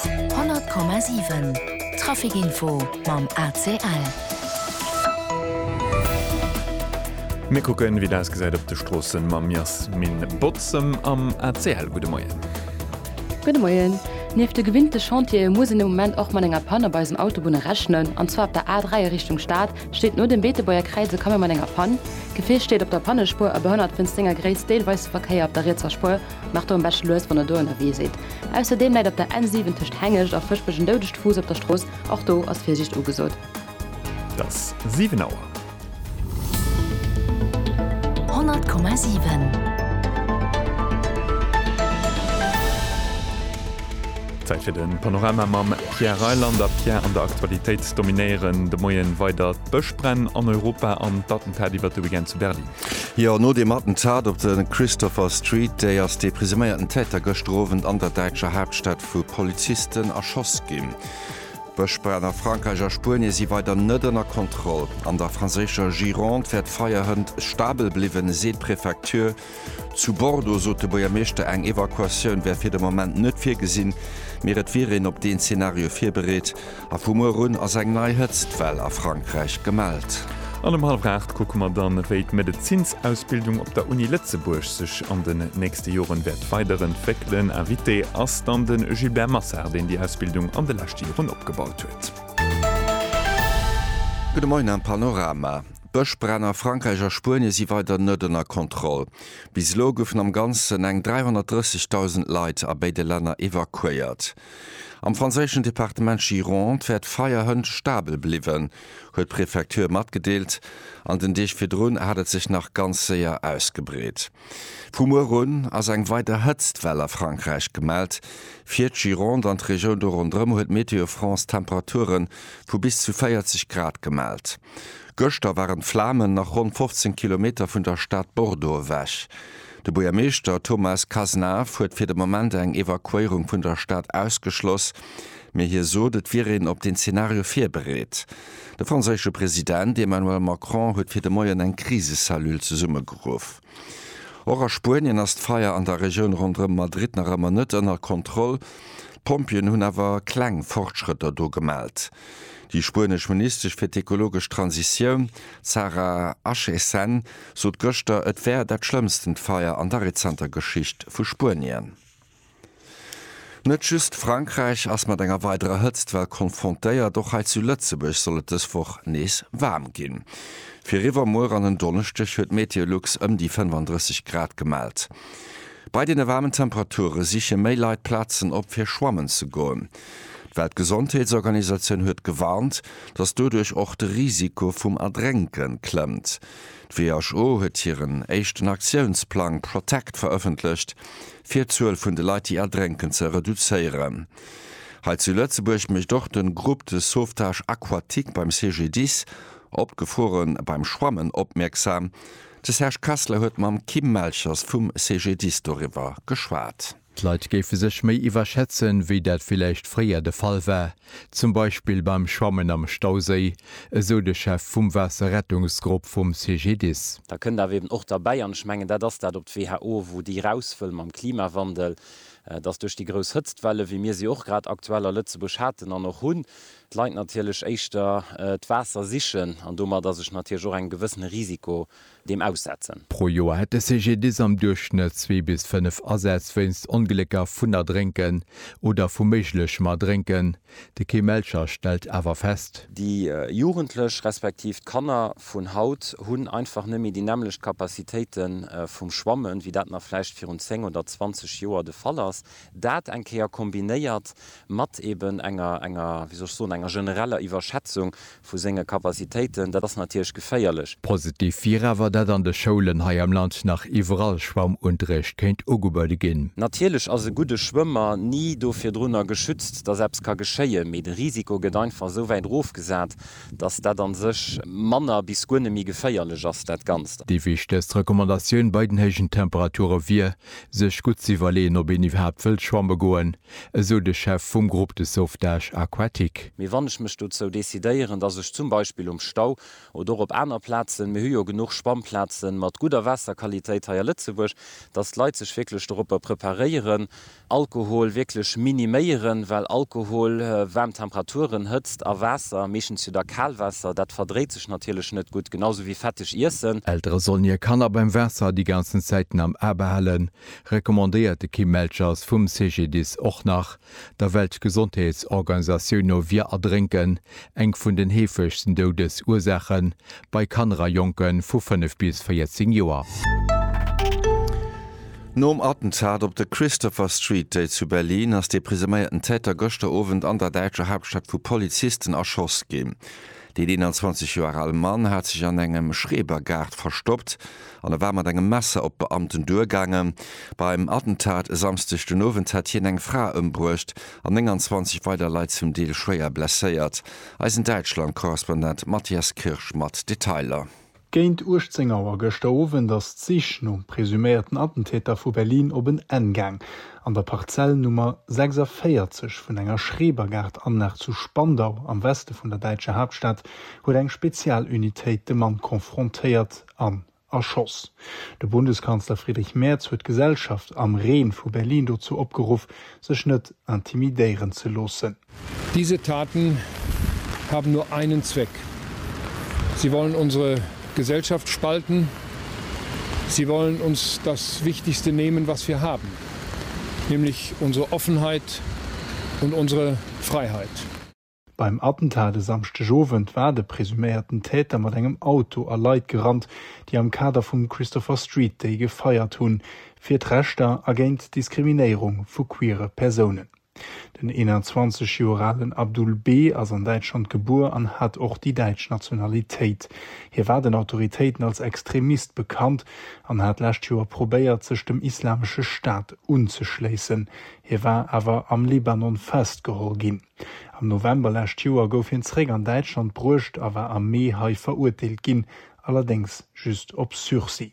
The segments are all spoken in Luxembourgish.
100,7 Trafic Info mam ACL. Mir kucken, wéi et ausgesäit op de Stroossen, mam Jasmin Bozem am ACL. Gudde Moien. Gudde Moien. Nieft de gewinnte Chantiere muss een de Moment och mat enger Pann op eisen Autobunne rechnen. An zwar op der A3 a Richtung Stad steet no dem Beetebuerger Kräiz e Camion mat enger Pann. D'Gefier steet op der Pannespuer a behënnert wéinst senger Gréisst deelweis de Verkéier op der rietser Spuer. Maacht der en besche lues wann der do ënnerwee sidd. Ausserdeem läit op der N7 tëscht Hengescht a Fëschbech en doudegt Fuuss op der Strooss, och do ass Virsiicht ugesot. Et ass 7 Auer. 100,7. Zäit fir de Panorama mam Pierre Reyland. A Pierre, an der Aktualitéit dominéieren de Moien weider d'Bëschbränn an Europa an d'Attentat iwwert de Weekend zu Berlin. Jo, no deem Attentat op de Christopher Street Day ass dee presuméierten Täter gëschter Owend an der däitscher Haaptstad vu Polizisten erschoss ginn. D'Bëschbränn a Frankräich a Spuenie si weider net ënner Kontroll. An der franséischer Gironde wär d'Feier hënt stabel bliwwen, seet d'Prefecture. Zu Bordeaux sot de Buergermeeschter, eng Evakuatioun wär fir de Moment net virgesinn, mee et wier een op deen Zenario virbereet. A vu muer un ass eng nei Hëtztwell a Frankräich gemellt. An ëm hallef aacht kucke mer dann, wéi d'Medezinsausbildung op der Uni Lëtzebuerg sech an den nächste Joren wäert weiderentwéckelen. Invité ass dann de Gilbert Massard, deen déi Ausbildung an de leschte Joren opgebaut huet. Gudde Moien am Panorama. D'Bëschbränn a Frankräich a Spuenie si weider net ënner Kontroll. Bis elo goufen am Ganzen eng 330.000 Leit a béide Länner evakuéiert. Am franséischen Departement Gironde wäert d'Feierhënt stabel bliwen, huet d'Prefecture matgedeelt. An den Deeg virdrun hat et sech nach ganz séier ausgebreet. Vu muer un ass eng weider Hëtztwell a Frankräich gemellt. Fir d'Gironde an d'Regioun do ronderëm huet Météo France Temperaturen vu bis zu 40 Grad gemellt. Gëschter waren d'Flamen nach ronn 15 Kilometer vun der Stad Bordeaux ewech. De Buergermeeschter Thomas Cazenave huet fir de Moment eng Evakuéierung vun der Stad ausgeschloss, mee hie sot, et wier een op den Zenario virbereet. De franséische President Emmanuel Macron huet fir de Moien eng Krisecellule zesummegeruff. Och a Spuenien ass d'Feier an der Regioun ronderëm Madrid nach ëmmer net ënner Kontroll. D'Pompjeeën hunn awer kleng Fortschrëtter do gemellt. Déi spuenesch Ministesch fir d'ekologesch Transitioun, d'Sara Acheson, sot gëschter, et wär dat schlëmmstent Feier an der rezenter Geschicht vu Spuenien. Net just Frankräich ass mat enger weiderer Hëtztwell konfrontéiert, och hei zu Lëtzebuerg soll et dës Woch nees waarm ginn. Fir iwwermuer an en Donneschdeg huet Meteolux ëm déi 35 Grad gemellt. Bei deene waarmen Temperature siche méi Leit Plazen op fir schwammen ze goen. D'Weltgesondheetsorganisatioun huet gewarnt, datt doduerch och de Risiko vum Erdrénke klëmmt. D'WHO huet hiren éischten Aktiounsplang Protect verëffentlecht, fir d'Zuel vun de Leit, déi erdrénken, ze reduzéieren. Hei zu Lëtzebuerg mécht och de Groupe de sauvetage aquatique beim CGDIS op d'Gefore beim Schwammen opmierksam. De Serge Kessler huet mam Kim Melchers vum CGDIS doriwwer geschwat. D'Leit géife sech méi iwwerschätzen, wéi dat villäicht fréier de Fall war, zum Beispill beim Schwammen am Stauséi, esou de Chef vum Waasserrettungsgrupp vum CGDIS. Da kënnt awer eben och derbäi, an ech mengen dat ass dat op d'WHO, wou déi raus wëll mam Klimawandel, dass duerch déi grouss Hëtztwelle wéi mir se och grad aktuell a Lëtzebuerg haten an och hunn, d'Leit natierlech éischter d'Waasser sichen an domat ass ech natierlech och engem gewëssene Risiko deem aussetzen. Pro Joer hätt de CGDIS am Duerchschnëtt zwee bis fënnef Asätz wéinst Onglécker vun Erdrénken oder vu méiglechem Erdrénken. De Kim Melcher stellt awer fest. Déi Jugendlech respektiv d'Kanner vun haut hunn einfach net méi déi nämmlecht Capacitéite vum Schwammen, wéi dat nach vläicht virun 10 oder 20 Joer de Fall ass. Dat eng Kéier kombinéiert mat eben enger, enger, wéi soll ech soen, enger genereller Iwwerschätzung Vu senge Capacitéiten, dat ass natierlech geféierlech. Positiv wier awer, datt an de Schoulen hei am Land nach iwwerall Schwammunterrecht kéint ugebuede ginn. Natierlech ass e gudde Schwëmmer ni do virdrunner geschützt, datt eppes ka geschéien, mee de Risiko gëtt einfach esou wäit erofgesat, datt dat a sech manner bis guer net méi geféierlech ass, dat Ganzt. Déi wichtegst Recommandatioun bei den héijen Temperature wier, sech gutt ze iwwerleeën, ob een iwwerhaapt wëllt schwamme goen. esou de Chef vum Groupe de sauvetage aquatique. Mee wann ech mech dozou decidéieren, dass ech zum Beispill um Stau oder och op aner Plazen, mir hu jo genuch Schwammplazen mat gudder Waasserqualitéit hei a Lëtzebuerg, dass d'Leit sech wierklech doropper preparéieren, Alkohol wierklech miniméieren, well Alkohol, waarm Temperaturen, Hëtzt a Waasser, meeschtens jo da Kalwaasser, dat verdréit sech natierlech net gutt, genau esou wéi fetteg Iessen. Eltere sollen hir Kanner beim Waasser déi ganzen Zäiten am A behalen, recommandéiert de Kim Melchers vum CGDIS och nach, der Weltgesondheetsorganisatioun no wier Erdrénken eng vun den heefegsten Doudesursaache bei Kanner a Jonke vu 5 bis 14 Joer. Nom Attentat op der Christopher Street, déi zu Berlin, ass dee presuméierten Täter gëschter Owend an der däitscher Haaptstad vu Polizisten erschoss ginn. Deen 21 Joer al Mann hat sech an engem Schrebergaart verstoppt an e war mat engem Messer op d'Beamten duergaangen. Beim Attentat e Samsdeg den Owend hat hien eng Fra ëmbruecht an 29 weider Leit zum Deel schwéier blesséiert. Eisen Däitschland-Korrespondent Matthias Kirsch mat Detailer. Géint 18 Auer gëschter Owend ass d'Sich nom presuméierten Attentäter vu Berlin op en Enn gaang. An der Parzell Nummer 46 vun enger Schrebergaart-Anlag zu Spandau am Weste vun der däitscher Haaptstad huet eng Spezialunitéit de Mann konfrontéiert an erschoss. De Bundeskanzler Friedrich Merz huet d'Gesellschaft am Reen vu Berlin dozou opgeruff, sech net intimidéieren ze loossen. Diese Taten haben nur einen Zweck, Sie wollen unsere Gesellschaft spalten, sie wollen uns das Wichtigste nehmen, was wir haben, nämlich unsere Offenheit und unsere Freiheit. Beim Attentat e Samschdeg Owend war de presuméierten Täter mat engem Auto a Leit gerannt, déi am Kader vum Christopher Street Day gefeiert hunn, fir d'Rechter a géint d'Diskriminéierung vu queere Persounen. Den 21 Joer alen Abdul B. ass an Däitschland gebuer an hat och déi däitsch Nationalitéit. Hie war den Autoritéiten als Extremist bekannt an hat d'lescht Joer probéiert, sech dem Islamesche Staat unzeschléissen. Hie war awer am Libanon festgeholl ginn. Am November lescht Joer gouf hien zeréck an Däitschland bruecht a war am Mee hei verurteelt ginn, allerdéngs just op Sursis.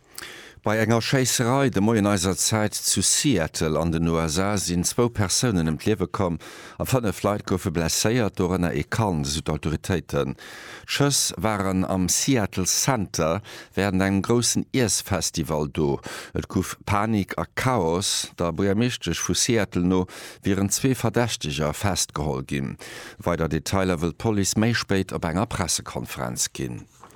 Bei enger Schéisserei de Moien eiser Zäit zu Seattle an den USA sinn zwou Persounen ëm d'Liewe komm a fënnef Leit goufe blesséiert, dorënner ee Kand, esou d'Autoritéiten. D'Schëss waren am Seattle Center wärend engem groussen Iessfestival do. Et gouf Panik a Chaos. Der Buergermeeschtesch vu Seattle no wieren zwee Verdächteger festgeholl ginn. Weider Detailer wëll d'Police méi spéit op enger Pressekonferenz ginn.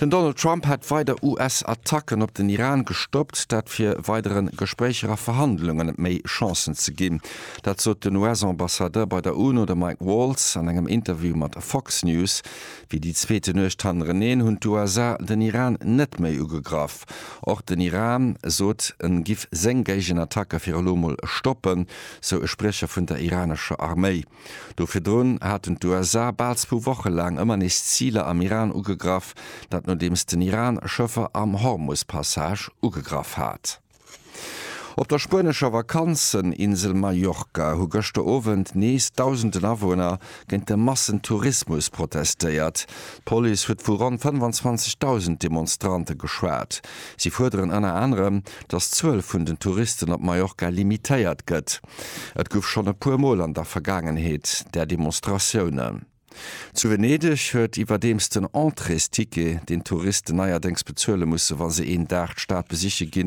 Den Donald Trump hätt weider US-Attacken op den Iran gestoppt, dat fir weidere Gespréicher a Verhandlunge méi Chancen ze ginn. Dat sot den US-Ambassadeur bei der UNO, de Mike Waltz, an engem Interview mat Fox News. Wéi déi zweete Nuecht hannereneen hunn d'USA den Iran net méi ugegraff. Och den Iran sot, en giff seng Géigenattacke fir elo mol stoppen, sou e Spriecher vun der iranescher Arméi. Do virdrun haten d'USA bal zwou Woche laang ëmmer nees Ziler am Iran ugegraff, dat nodeems den Iran Schëffer am Hormus-Passage ugegraff hat. Op der spuenescher Vakanzeninsel Mallorca hu gëschter Owend nees dausenden Awunner géint de Massentourismus protestéiert. D'Police huet vu ronn 25.000 Demonstrante geschwat. Si fuerderen ënner anerem, datt d'Zuel vun den Touristen op Mallorca limitéiert gëtt. Et guff schon e puer mol an der Vergaangenheet där Demonstratiounen. Zu Venedeg huet iwwerdeems den Entréesticket, deen d'Touristen neierdéngs bezuele musse wa se een Dag d'Stad besiche gin,